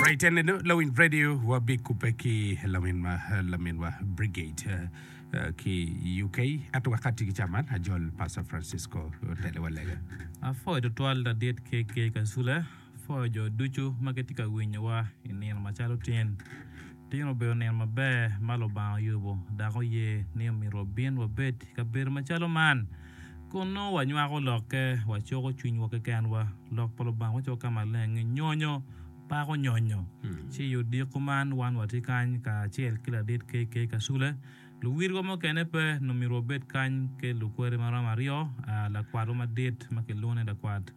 Ritenneno lawiny radio wabikubbe ki laminwa laminwa Brigid eh, eh, ki UK ento wakati ki caman ajol Pastor Francisco telewa lega. Apwoyo tutwal ladit KK Kasule, apwoyo jo ducu ma gitye ka winyowa i nino macalo tin. Tin obedo nino maber ma Lubanga oyubo dok oye ni omito wabin wabed i kabedo macalo man kun nongo wanywako lokke, wacoko cwinywa kekenwa, Lok pa Lubanga wacoko ka maleng-ngi, Nyonyo pako nyonyo. Ci i odiko man, wan watye kany kacel ki ladit KK. Kasule. Luwirwa mukene pe, nongo myero wabed kany ki lukweri ma romo aryo, lakwatwa madit ma kilwongo ni lakwat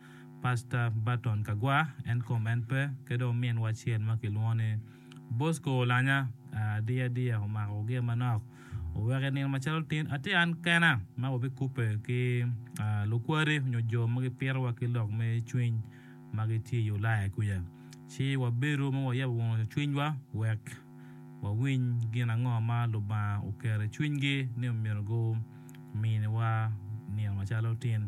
Pastor Burton Kagwa, en kom en pe, ki dong ominwa acel ma kilwongo ni. Bosco olanya adiya adiya omako gia manok oweko i nino macalo tin atye an kena ma wabikubbe ki lukwade nyo jo ma gipitowa ki lok me cwiny ma gitye i Ulaya kwica ci wabedo ma wayabo wang cwinywa wek wawiny gin ango ma Lubanga oketo i cwinygi ni myero guminiwa nino macalo tin.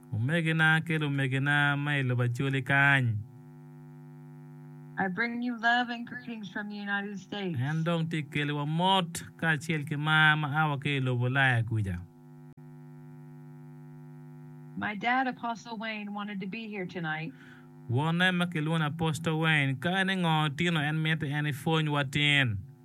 Omegina ki lumegina ma i lobo Acholi kany. En dong tye ka keliwa mot kacel ki mar ma a wa ki i lobo Ulaya kuca. Wonne ma kilwongo ni Apostle Wayne, ka en i ngo tino en miti en ipwonywa tin?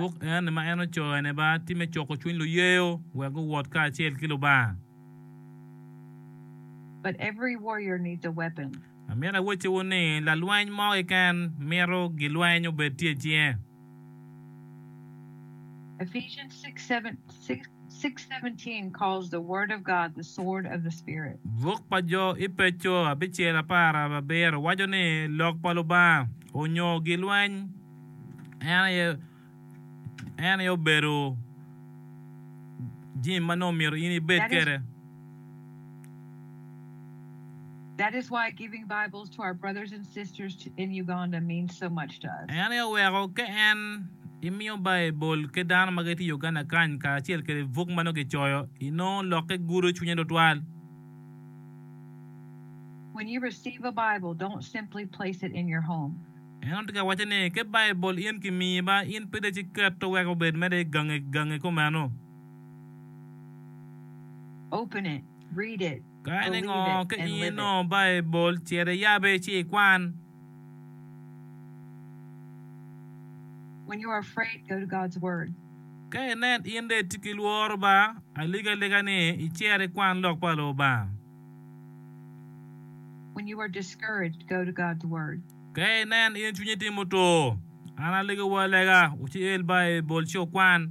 Buk eni ma en ocoyo ene ba tye me coko cwiny luyeyo wek guwot kacel ki Lubanga. Amito awacciwu ni lalweny mo keken mito gilweny obed tye i cinge. Ephesians 6, 7, 6, 6, 17 calls the Word of God the sword of the Spirit. Buk pa Jo i Peco abicel apar abiro waco ni Lok pa Lubanga onyo gilweny en aye en aye obedo jami ma nongo myero in ibed That is, kwede. En aye oweko ka en imiyo Baibul ki dano ma gitye i Uganda kany kacel kwede buk ma nongo kicoyo, inongo lokke gudo cwinye tutwal. En onongo tye ka waco ni, Ka Baibul in kimiyi ba, in pire ci kete wek obed mere i gangi gangi kumeno. Ka en engo ka in inongo Baibul, cit iyabe ci ikwan. Ka inen in dong itye ki lworo ba, alegaalega ni icer ikwan Lok pa Lubanga. Ka inen in cwinyi tye mutur, an alegowu alega, wucel Baibul ci wukwan.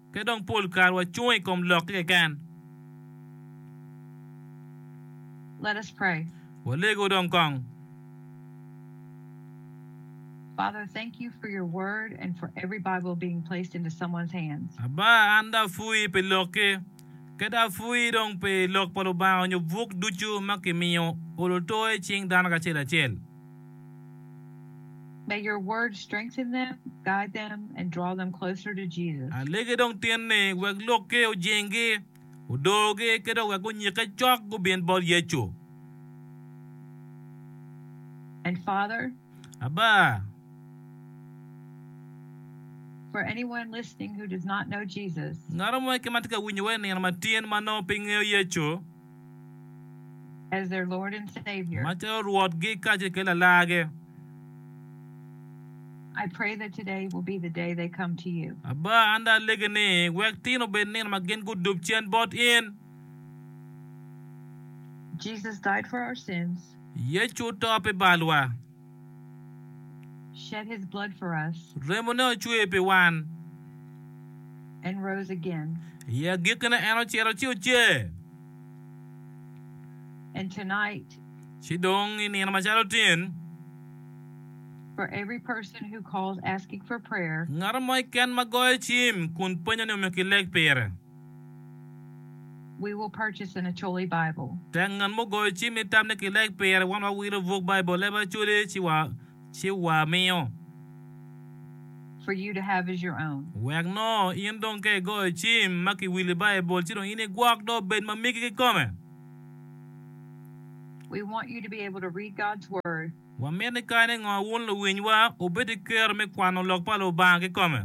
Pe dong pol kare wacung i kom lokki keken. Let us pray. Walego dong kong. Father, thank you for your word and for every Bible being placed into someone's hands. Aba, an dong apwoyi pi lokki. Kadi apwoyi dong pi Lok pa Lubanga nyo buk ducu ma kimiyo oloto i cing dano kacel acel. May your word strengthen them, guide them, and draw them closer to Jesus. Alege dong tin ni wek lokki ojinggi, odogi ki dong wek gunyikke cok gubin bot Yecu. And Father, Aba, for anyone listening who does not know Jesus, ngat mo keken ma tye ka winyo wa i nino matyen ma nongo pe ngeyo Yecu, as their Lord and Savior. ma calo Rwotgi kacel ki Lalargi. I pray that today will be the day they come to you. Aba, an dong alegi ni, wek tin obed nino ma gin gudub cen bot in. Jesus died for our sins. Yecu oto pi balwa. shed his blood for us, Remone ocwer pi wan. and rose again. I agikkine en ocito ci ocer. And tonight, Ci dong i nino macalo tin, for every person who calls asking for prayer, ngat mo keken ma goyo cim kun penyo ni omyero kileg pire. We will purchase an Acholi Bible. Tek ngat mo goyo cim ni tam ni kileg pire wan wawilo buk Baibul leb Acholi ci wamiyo. For you to have as your own. Wek nongo in dong ka igoyo cim ma kiwili Baibul ci dong in igwok dong obed ma migi kikome. We want you to be able to read God's Word. Wamito ni kadi ngo wun luwinywa wubed ki kero me kwano lok pa Lubanga kikome.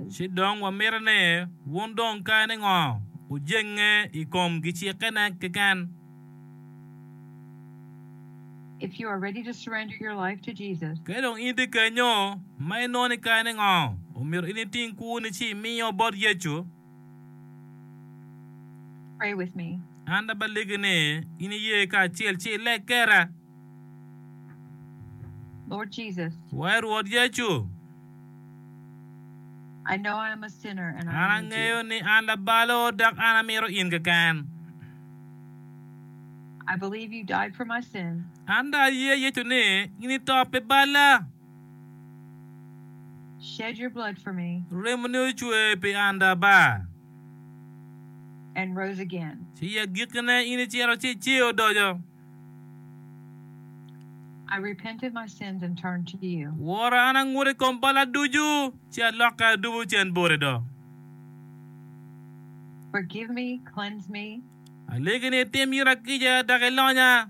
Ci dong wamito ni wun dong kadi ngo wujenge i kom gicikkene keken. Ka dong in tye kenyo ma inongo ni kadi ngo omyero in iting kwoni ci imio bot Yecu, Pray with me. An abaligi ni in iye kacel ci ileg kera. Lord Jesus, Wai Rwot Yecu, I know I am a sinner and an I need angeyo you. ni an labalo dok an amito in keken. I believe you died for my sins An dong aye Yecu ni in ito pi balla. Shed your blood for me. Remoni ocwer pi an dabar. And rose again. Ci i agikkine in icito ci icer odoco. I repented my sins and turned to you. Wora an anguto i kom balla ducu, ci alokke adubo cen boti do. Forgive me, cleanse me. Alegi ni itim ita kica dok ilonya.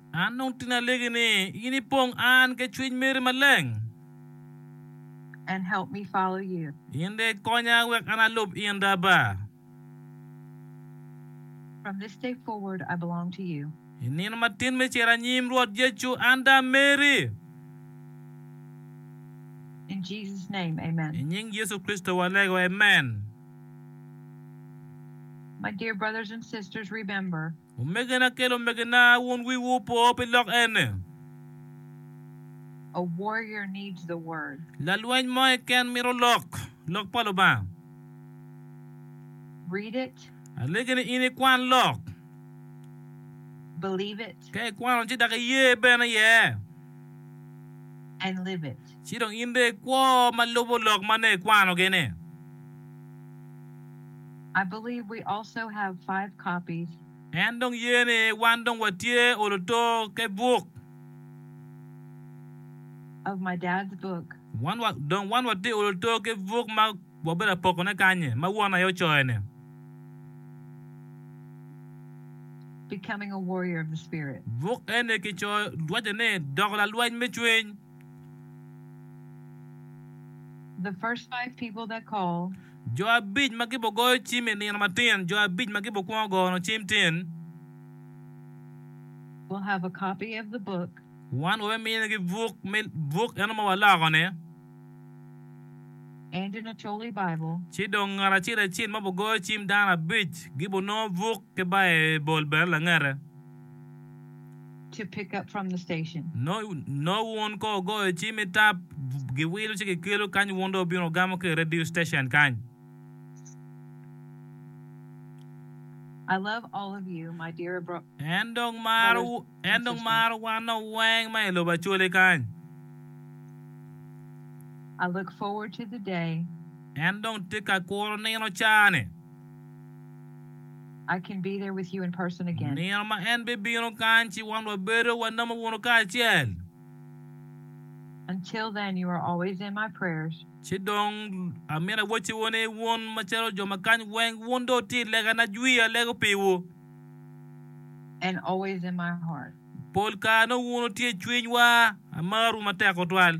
An dong tin alegi ni in ipong an ke cwiny meri maleng. And help me follow you. In dong ikonya wek an alub in da ba. From this day forward I belong to you. I nino matin me cito anyim Rwot Yecu an da meri. In Jesus name, amen. I nying Yecu Kricito walego, amen. My dear brothers and sisters remember. Omegena kel omegena wun wi wu opo pi lok ene. A warrior needs the word. Lalweny mo keken mito lok, lok pa Lubanga. Read it. Alegi ni in ikwan lok. Believe it. Ka ikwano ci dok iye bene iye. And live it. Ci dong in dong ikwo ma lubo lok ma nongo ikwano gini. I believe we also have five copies. En dong ye ni wan dong watye olo to ke buk. Of my dad's book. Wan wa dong wan watye olo to ke buk ma wabedo apoko ne kanyi ma won aye ocoyo ni. Becoming a warrior of the spirit. Buk eni kicoyo waco ni doko lalweny me cwiny. Jo abic ma gibo goyo cim i nino matin. Jo abic ma gibo kwongo gono cim tin. Wan wabe minigi buk me buk eno ma waloko-ni. Ci dong ngat acel acel ma obo goyo cim dano abic gibo nongo buk ki Baibul bene langete. to pick up from the station. Nongo wun ko wugoyo ci me tap, giwilo ci gikelo kany wun dong wubino wugamo ki i radio station kany. I love all of you, my dear brothers and sisters. En dong maro wan dong weng ma i lobo Acholi kany. I look forward to the day. En dong tye ka kuro nino ca-ni. Nino ma en bibino kany ci wan wabedo wanamo bunu kacel. Ci dong, amito awacciwu ni wun macalo jo ma kany weng, wun dong wutye i lega na jwi alego piwu. Pol kare nongo wun wutye i cwinywa. Amarwu matek tutwal.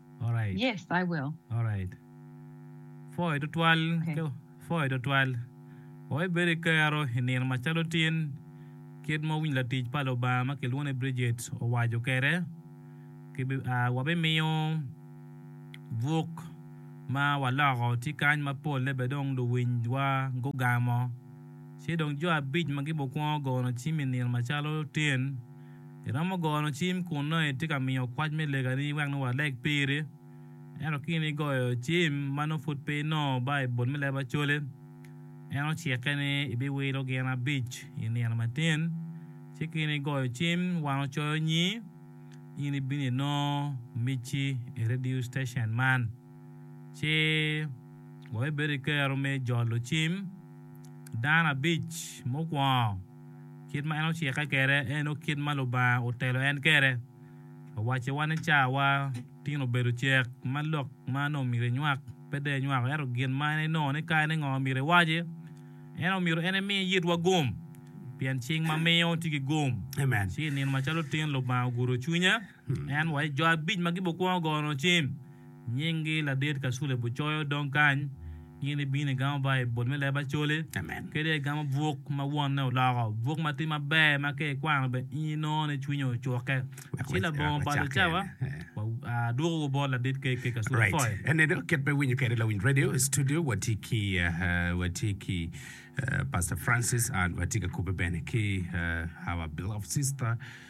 Pwoyo tutwal. Wek ibed ki kero i nino macalo tin, kit ma winy latic pa Lubanga ma kilwongo ni Brijit owaco kwede, wabimiyo buk ma waloko tye kany ma polle bene dong luwinywa gugamo. Ci dong jo abic ma gibikwongo gono cim i nino macalo tin, Iromo gono cim kun nongo itye ka miyo kwac me legani wek nongo waleg piri. Ento ka in igoyo cim ma nongo pud pe inongo Baibul me leb Acholi, en ocikke ni ibiwilo gin abic i nino matin. Ci ka in igoyo cim wan ocoyo nyi, in ibino inongo micci i rediu citecen man. Ci wabibedo ki kero me jolo cim dano abic mukwongo. Kit ma en ocikke kwede eno kit ma Lubanga otelo en kwede. Owacciwa ni cawa tin obedo cek ma lok ma nongo myero enywak pe dong enywako ento gin ma en enongo ni kare ni ngo ma myero ewaci. Ento myero en emi itwa gum pien cing ma miyo tye ki gum ci i nino macalo tin Lubanga ogudo cwinya. En wa i jo abic ma gibukwongo gono cim, nyinggi ladit Kasule Bucoyo dong kany. In ibino igamo ba i bol me leb Acholi, kadi igamo buk ma wonne oloko, buk ma tye maber ma ka ikwano bene in inongo ni cwinyi ocukke. Ci labongo balo i cawa, adwokowu bot ladit KK Kasule Foyo. Eneno kit ma iwinyo kwede Lawiny Radio i studio. Watye ki, watye ki Pastor Francis and watye ka kobbe bene ki our beloved sister.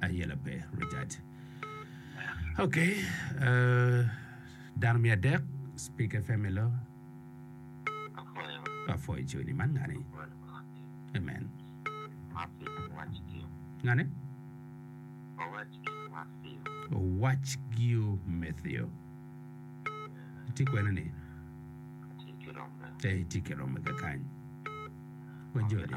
ayela pe Richard ok dano me adek speak fm elo apwoyo coni man ngani amen ngani owac giyo Matthew tye kwene ni tye ki romme kakany wajoni